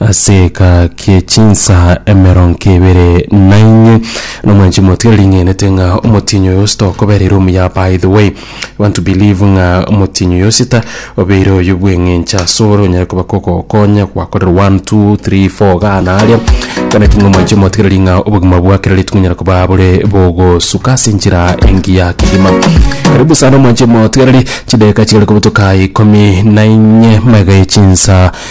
Ase eka kie chinsaa emeronko ebere na inye na mwanchi motwe ring'enete ng'a omotienyi oyo osita okobera ere omuya by the way I want to believe ng'a omotienyi oyo osita obeire oyo bw'eng'encho asore onyare koba kogokonya gwakorera one two three four gana aria kana ki ng'a mwanchi motwe riria ng'a obogima bwa kera rituko onyare koba bore bogosuka ase enchera engiya kegima karibu sana mwanchi motwe riria chidageka chigare kobutoka ikomi na inye magega ya chinsa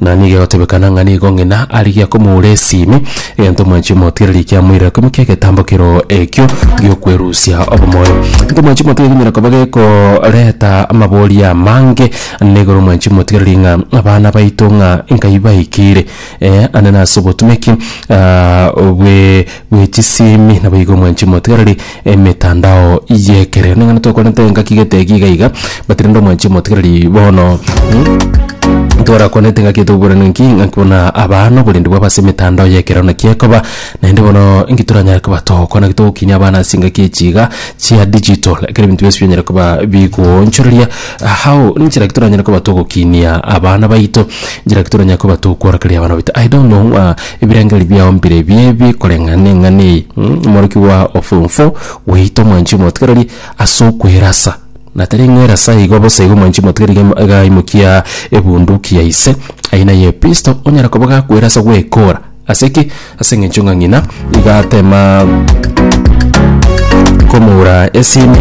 Na nigo egotebekana ng'a nigo ng'ina arigia komoura esimi, egento mwanchi omotigereri kiamoirire koimo ki'egetambo kero ekio gi'okwerusia obomoyo. Egento mwanchi omotigereri kinyare koba gekoreta amaboria amange ande igoro mwanchi omotigereri ng'a abana baito ng'a nkai baikire ande nase obotumeki bwe. bwe chisimi naboigo mwanchi motigareri emetandao yekerero ning'ana tokorente engaki gete egi iga iga but rende omwanchi motigareri bono torakwanete ngaki toburana nki ngaki buna aba noborendi bwabo ase emetandao yekerero naki ekoba naende bono nki toranyare koba togokora naki togokinia abana ase engaki echi iga chia digital ekere ebinto bionsi binyare koba bigoonchoreria how ninchera ki toranyare koba togokinia abana baito nchera ki toranyare koba togokorokeria abana baito i don't know ng'a. Ebirengererio biao mbire biebi koreng'ana neng'ana eye, omorokigwa o form four gweito mwanchi omotigareri ase okwerasa na tari ng'a erasa igo bosa igo mwanchi omotigareri iga iga aimokia ebunduki ya ise aina ye pistol onyare koba gakwerasa gwekora ase ki ase eng'encho ng'a ng'ina iga atema komoura esimi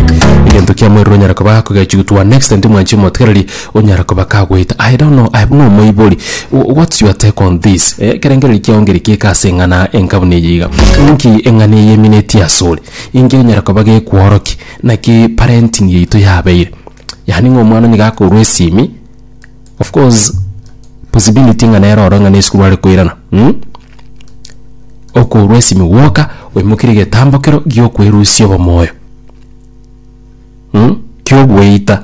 egento kiamoerire onyare koba akogechiwa to an extent mwanchi omotigareri. Onyare koba kagoeta I don't know, I am no omoibori, what's your take on this? Ekerengereri kiao ngerikeke ase eng'ana enkabuna eye iga? Inki eng'ana eye emineti asore? Inki onyare koba gekworokia? Naki parenting yaito yabeire? Yaani ng'a omwana nigo akorwa esimi, of course possibility ng'a nere oro ng'a ne esukuru are koirana mh? Okorwa esimi gwoka oimokerie egetambokero giokwerusia obomoyo mh? Kiogweita.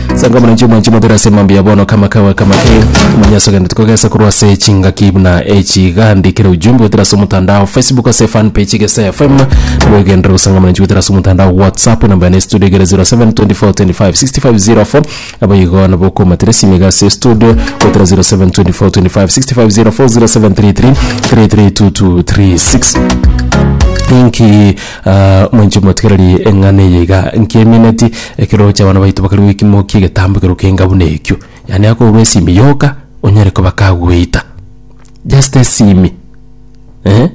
Sanga omorancho omwanche mobere ase emambia ya bono kama kawe kama ke manya ase ogende tikogesa korwa ase chingaki buna echi gandi kere ujumbe goetera ase omotandao Facebook ase fan page Gesa FM nabo egenderera gosanga omorancho goetera ase omotandao WhatsApp namba yane studio egere 0724256504 abo igo nabo okomatera esimi iga ase studio goetera 0724256504 0733 332236 Thank you. Aa, mwenche motigererie eng'ana eye iga, nkemineti ekero roche abana baito bakare goikimokia egetambo ekero kenga buna ekio, yaani akourwa esimi yoka onyare koba kagweita, just esimi eh,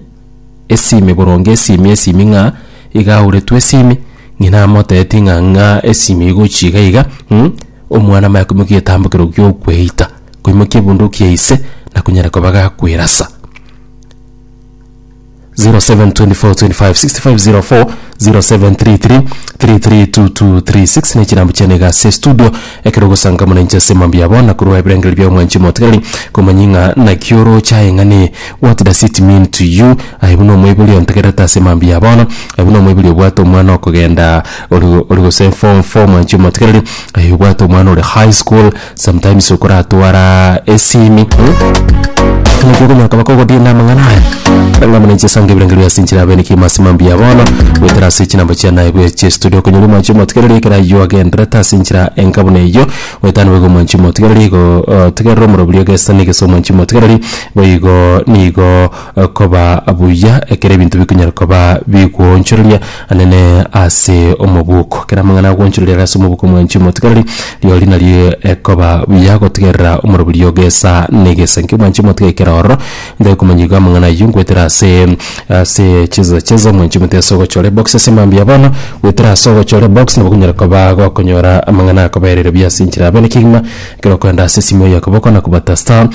esimi boronge esimi esimi ng'a iga auretwe esimi, ng'ina amoteeti ng'a ng'a esimi igochi iga iga mm, omwana amanye koimokia egetambo ekero giokweita, koimokia ebunduki ya ise, nakonyare koba gakwerasa. 0724256504 0733332236 ne chirambu chiane iga ase estudio ekero ogosangamana inche ase mambia yabo na korwa ebirengererio bia omwanchi omotigareri komanya ng'a naki oroche aye ng'a ne what does it mean to you aye buna omoibori ontegererete ase mambia ya bono aye buna omoibori obwate omwana okogenda ori ori gose form four omwanchi omotigareri aye obwate omwana ore high school. Sometimes okoratwara esimi naki okonyoka bakogodie na amang'ana aya ng'a muna inchesanga ebirengo bia ase enchera abenekie ime ase mambia bono goetera ase chinamba chia naye bwe chiestudio okonyora omwancho omotigereri ekero aywo agenderete ase enchera enka buna eywo goetana nigo igo omwanchi omotigereri igo otigerere omorobori ogesani gese omwanchi omotigereri boigo nigo okoba buya ekero ebinto bikonyara koba bigwoonchoreria. anene ase omobuko. Kera amang'ana agwanchorire ase omobuko mwanchi omotigareri, riori nario ekoba buya gotigerera omoroberio ogesa negesa. Inki mwanchi omotiga ekero ororo? Ntai komanya igo amang'ana ayio ngwetera ase ase cheza cheza mwanchi omotiga ase ogochore box ase mambia bono gwetera ase ogochore box nabo konyara koba gokonyora amang'ana akoberire buya ase enchera abere kegima ekero okorenda ase esimo yaye okoboko na kobata star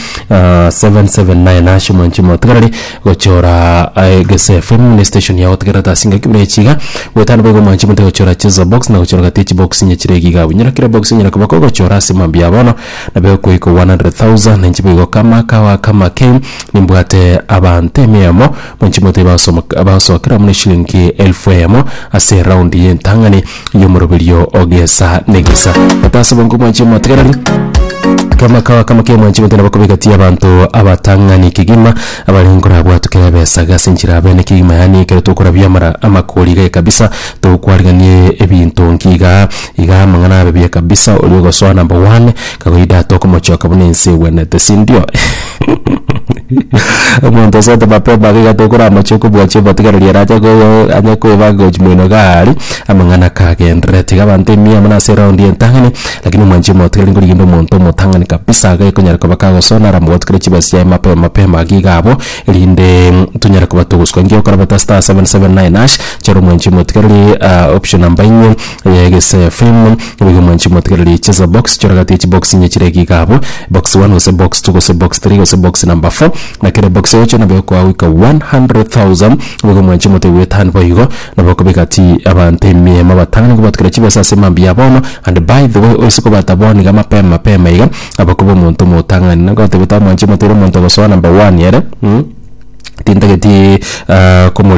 seven seven nine hash mwanchi omotigareri Gochora egesefe mune station ya gotegerera tasi ngaki buna echi iga goetano boigo mwanche mote gochora chizo box na gochora gati echi box inye chire igiga abwo nyora kera box enyara koba ko gochora ase mambia bono nabe okoiko 100,000 na inche boigo kama kawa kama kei nimbwate abanto emeyomo mwanchi mote bagosomoka bagosokera mune shilingi elfu eyemo ase eround ye entang'ani. y'omoroberio o gesa ne gesa. Gete ase obongo mwanchi omotegereri, kama kawa kama kia mwanchi gete nabo kobegatia abanto abatang'ani kegima abare nkorabwatwe kera ebesa iga ase enchera bene kegima yaani ekero tokorabia amara amakori iga ekabisa tokwariganie ebinto nki igaa igaa amang'ana abe buya kabisa oria ogosoa number one kawaida tokomochoka buna ense egwenete sindio. Omonto osoete mapema iga iga tokoramachia kobua chibotigareri ere ache koo ache koeba gochia moino igaa aria amang'ana kagenderere. Tiga abanto emiya amo nase eround entang'ani lakini omwanchi omotigareri ngori kende omonto omotang'ani kabisa iga ekonyara koba kagosona ara mogotu kere chibesa chiaye mapema mapema iga iga abwo erinde tonyare koba togoswa. Engio okora beta star seven seven nine hash chore omwanchi omotigareri option number eng'we. Eye gese film nigo mwanchi motigererie chesa box choragatie chi box inye chire ekiga abwo box one gose box two gose box three gose box number four na kere box eocho nabo ekoa goika 100,000 nigo mwanchi mote gwetan boigo nabo okobeka ti abanto emiemo batano nigo batokire chibesa ase mambia bono and by the way oise kobata bono iga mapema mapema iga aba koba omonto omotang'ani nagotebe ta mwanchi mote ere omonto ogosoa number one ere tintageti komorimi.